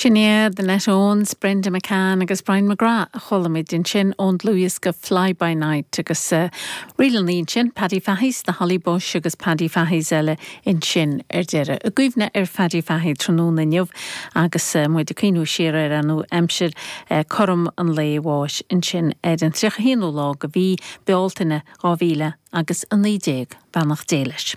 Sin iad Annette Owens, Brenda McCann agus Brian McGrath a chualamid ansin ón dlúthdhiosca Fly By Night agus sa ríleanna ansin Paddy Fahy's The Holly Bush agus Paddy Fahy's eile ansin ar deireadh. I gcuimhne ar Phaddy Fahy tráthnóna inniu agus muid ag cuimhniú siar ar an aimsir cothrom an lae bháis ansin ar an 31ú lá de mhí Bealtaine 2000 agus 19. Beannacht Dé leis.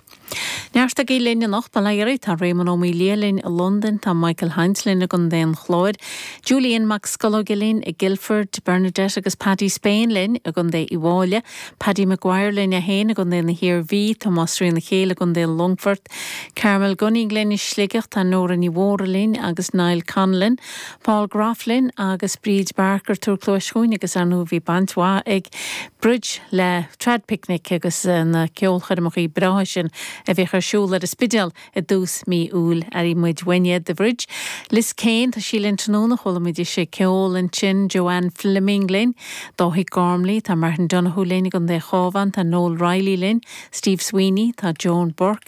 Neart agaibh linn anocht ba léir. Tá Réamonn Ó Maoildhia linn i Londain, tá Michael Hynes linn i gContae an Chláir, Julian Mac Scolóige linn i Guildford, Bernadette agus Paddy Spain linn i gContae Uíbh Fhailí, Paddy McGuire linn é féin i gContae na hIarmhí, Tomás Ó Céile i gContae an Longfoirt, Carmel Gunning linn i Sligeach, tá Nóra Ní Mhórdha linn agus Niall Conlon, Paul Groff linn agus Bridge Barker, Túr Cluais Chuain agus ar ndóigh bhí baint mhaith ag. Bridge le Traidphicnic agus na ceolchoirmeacha breátha sin a bhíodh ar siúl ar an Spidéal i dtús mí Iúil. Aireoidh muid uainn é, Bridge, Liz Kane, tá sí linn tráthnóna, chualaimid ise ag ceol ansin, Joanne Fleming linn, Dáithí Gormley, tá Martin Donohue linn i gContae Chábhán, tá Noel Reilly linn, Steve Sweeney, tá Joan Burke,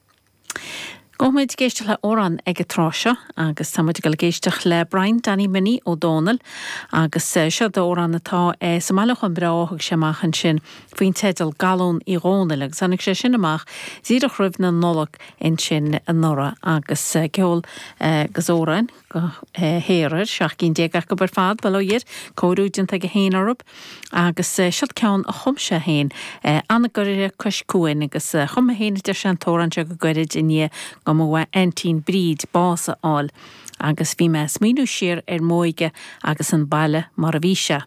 Beidh muid ag éisteacht le amhrán ag an tráth seo agus tá muid ag goil ag éisteacht le Brian Danny Minnie Ó Dónaill agus seod amhrán atá sa mbailiúchán breá a thug sé amach ansin faoin teideal Galún Uí Dhónaill agus tháinig sé sin amach díreach roimh an Nollaig ansin anuraidh agus ceol agus amhráin. go léir air, seacht gcinn déag acu ar fad, bail ó Dhia air, cóiriú déanta aige féin orthub agus siod ceann a chum sé féin, Anagaire Cois Cuain agus chum mé féin a deir sé an t-amhrán seo go gairid i ndiaidh do m'aintín Bríd bás a fháil agus bhí mé a' smaoiniú siar ar m'óige agus an baile mar a bhí sé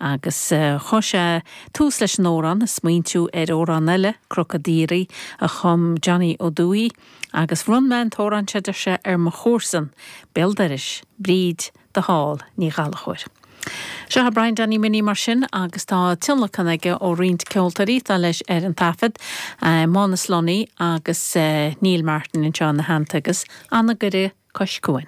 agus chuir sé tús leis an amhrán a' smaointiú ar amhrán eile, Cnoc an Diarraigh, a chum Johnny Ó Dúighí. agus bhronn mé an t-amhrán seo, deir sé, ar mo chomharsan béal dorais, Bríd de Fál Ní Ghallchóir. Seo é Brian Danny Minnie mar sin agus tá tionlacan aige ó roinnt ceoltóirí atá leis ar an taifead, Mánus Lunny agus Neil Martin anseo ina theannta agus Anagaire cois cuain.